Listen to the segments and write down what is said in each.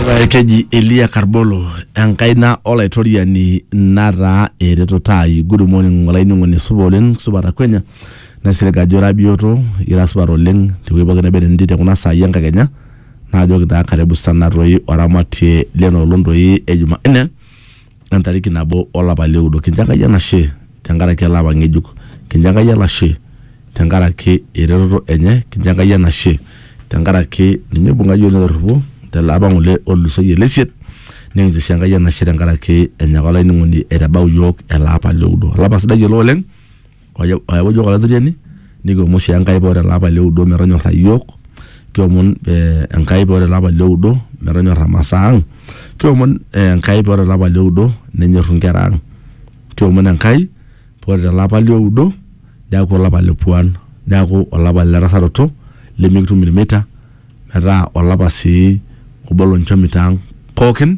Ee, keji elia karbolo enkaina olaitoriani nataa eretoto ai good morning olainining'oni supa oleng supa takwenya naisilig ajo ira bioto ira supat oleng tewueji pookin neba entii tekuna saai enkakenya naajoki taa karibu sana toi oramatie lena olong toi e jumanne entariki nabo olapa lioudo. Kincho Enkai enashe tenkaraki ele apa ng'ejuk. Kincho Enkai enashe tenkaraki eretoto enye. Kincho Enkai enashe tenkaraki ninye oibung'a yiok netorripo tele apa ng'ole otulusoyie lesiet. Nikincho sii Enkai enashe tenkaraki enyaka olainining'oni aitabau yiok ele apa lioudo. Olapa sidai ele oleng. ayawua iyiook olatirriani nikiomon sii Enkai paa ore ele apa lioudo metonyorra iyiook kiomon ee Enkai paa ore ele apa lioudo metonyorra imasaa ang' kiomon Enkai paa ore ele apa lioudo nenyorru inkera ang' kiomon Enkai paa ore tele apa lioudo neeku olapa le puan neeku olapa le tasaroto lemikitum ilmita metaa olapa sii obo lonchomito ang' pookin.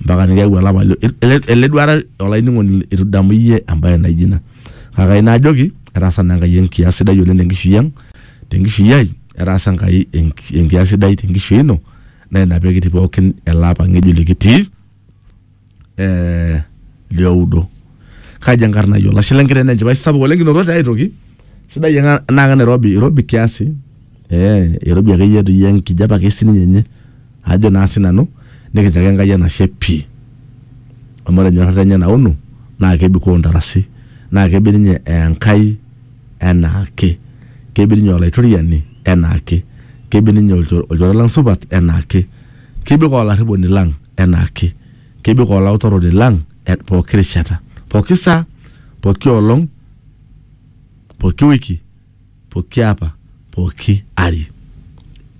mpaka nikiyau olapa lio ele, ele duara olainining'oni itu idamu iyie embaye naijo ina kake aina ajoki etaasa naa Enkai enkias sidai oleng tenkishui ang tenkishui ai etaasa Enkai enki- enkias sidai tenkishui ino naa ina pekitii pookin ele apa ng'ejuk likitii eh, lioudo kaji enkarna ai olashe lenkiteng naa enchipai sapuk oleng kinotote ae toki sidai ena naa ke Nairobi irobi kiasi eh, irobi akeyie etii enkijape ake sininye enye ajo naa sinanu nikincho ake Enkai enashe pii amu ore enyorrata enye nauno naa kebikoo ntarasi naa kebik ninye aa Enkai enaake, kebik ninye aa Olaitoriani enaake, kebik ninye aa olchore lang' supat enaake, kebik aa olarriponi lang' enaake, kebik aa olautaroni lang' pooki rishata, pooki saa, pooki olong', pooki wiki. pooki apa pooki ari.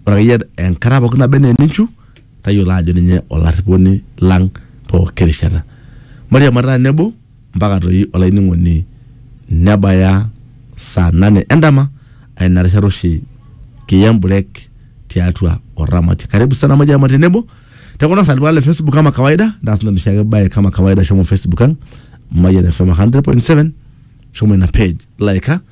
Ore akeyie enkata pooki naba enaa eninchu tayiolo ajo ninye olarriponi lang pooki rishata. Mairiamarita tenebo mpaka toi olainining'oni nebaya saa nane endama aa ina rishata oshi kiya emburek tiatua Oramatie. Karibu sana mairiamari tenebo te kuna saai le Facebook kama kawaida ntaas ina noshiake bae kama kawaida shomo Facebook ang Mayian FM 100.7 shomo ina page, laika